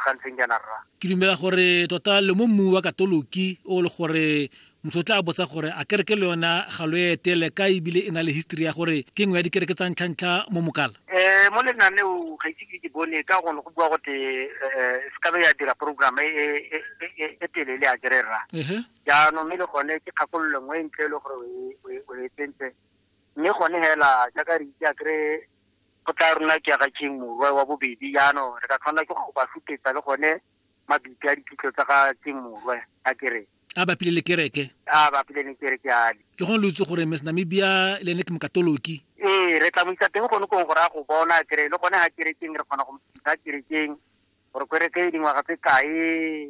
ga ntseng jaana rra ke dumela gore tota le mo mmu wa katoloki o le gore motho o tla botsa gore a kereke le yona ga lo etele ka ebile e na le history ya gore ke nngwe ya dikereke tsa ntlhantlha mo mokala um mo lenaneo ga ise ke ke bone ka gone go bua gote um se kabe ya dira program e, e, e, e, e telele a kere rra ehe jaanong mme le gone ke kgakololo nngwe e ntle e le gore o e- o e- o e tsentse mme gone fela jaaka re itse a kry Go tlaa runa ke ya ga King Morwa wa bobedi jaano re ka tshwanela ke go ba sutetsa le gone mabitla a diphitlho tsa ga King Morwa a ke re. A bapile le kereke. A bapile le kereke jale. Ke gone lo itse gore Miss Namibia le ene ke Mokatoloki. Ee, re tla mo isa teng gone kong gore a go bona a ke re le gone ga kerekeng re kgona go mo fitlhisa kerekeng gore kereke e dingwaga tse kae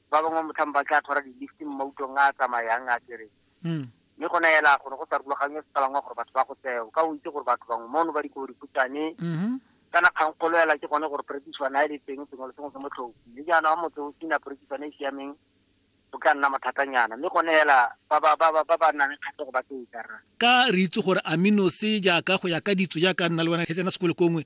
ba bangwe motlhang ba tla tshwara di-lifting mo mautong a a tsamayang a kere hmm. mme go naela gore go sa rulagangwe sepalangwa gore batho ba go tseo ka o itse gore batho bangwe mono ba dikobo dikhutshwane mm-hmm. kana kgang kgolo ela ke gone gore perekiswana a e le teng sengwe le sengwe se motlhofi mme jaana wa motse o sena perekiswana e, e siameng o ka nna mathatanyana mme gone ela ba ba nang kgatlhego ba tse ikarang ka re itse gore aminose jaaka go ya ka ditso jaaka nna le wena he tsena sekolo kongwe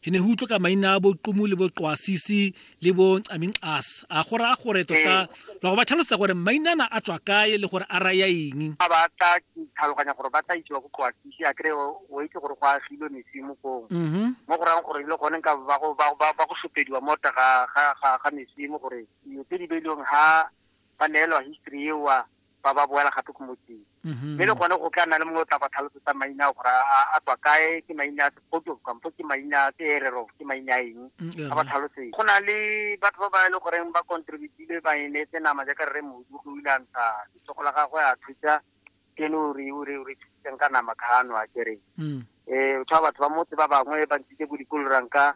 he ne go utlwe ka maina a boqumu le boqwasisi le bo aming as a go raya gore tota ba go ba tlhalosa gore mainana a tswa kae le gore a raya eng a ba tla tlhaloganya gore ba tla isiwa go qwasisi a kry o itse gore go agilwe mesimo kong mm-hmm. mo go rayang gore le gone ka ba go sopediwa mota ga mesimo gore dilo tse di beilweng ha ba neelwa history ewa ba ba boela gape ko motseng mm-hmm. mme le gone go tla nna le mongwe o tla ba tlhalosetsa maina gore a tswa kae ke maina photo kampo ke maina ke erero ke maina eng mm, a ba tlhalosetse go na le batho ba ba e le goreng ba contributile ba e neetse nama jaaka re modu go ile a ntsha letsogo la gagwe a thusa kene o re o re o re thusitseng ka nama ka ano a kereng um mm. eh, o tshwa batho ba motse ba bangwe ba ntshitse bo dikoloranka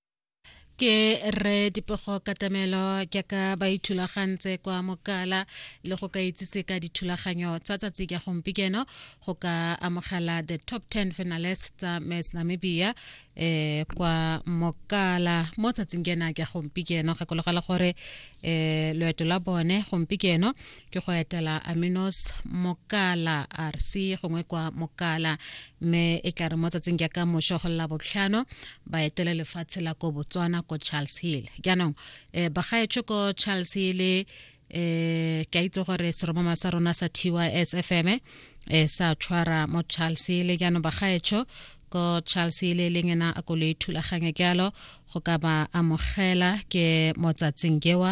ke re dipego katamelo jaaka ba ithulagantse kwa mokala le go ka itsise ka dithulaganyo tsa tsatsi ka gompikeno go ka amogela the top 10 finalist tsa miss namibia eh kwa mokala mo tsatsing kena ka gompikeno gakologela gore eh loeto la bone gompikeno ke go etela aminos mokala rc gongwe kwa mokala mme e tla re mo tsatsing jaaka mošo go lela botlhano ba etele lefatshe la ko botswana ko charles hill jaanong um bagaetsho ko charles hill eh ke a itse gore seromama sa rona sa tys fm eh sa tshwara mo charles hill jaanong bagaetsho ko charles le leng ena a ko le thulaganya jalo go ka ba amogela ke motsatsing jewa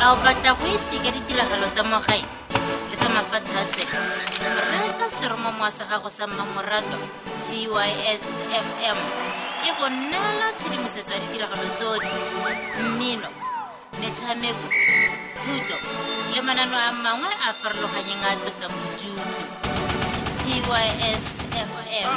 a o batla go itse ka ditiragalo tsa mogae le tsa mafatshe a sele reetsa seromamowa sa gago sa mmamoratwa tys fm e go neela tshedimosetso ya ditiragalo tsotlhe mmino metshameko thuto le manano a mangwe a farologanyeng a tlosang bodutu tys fm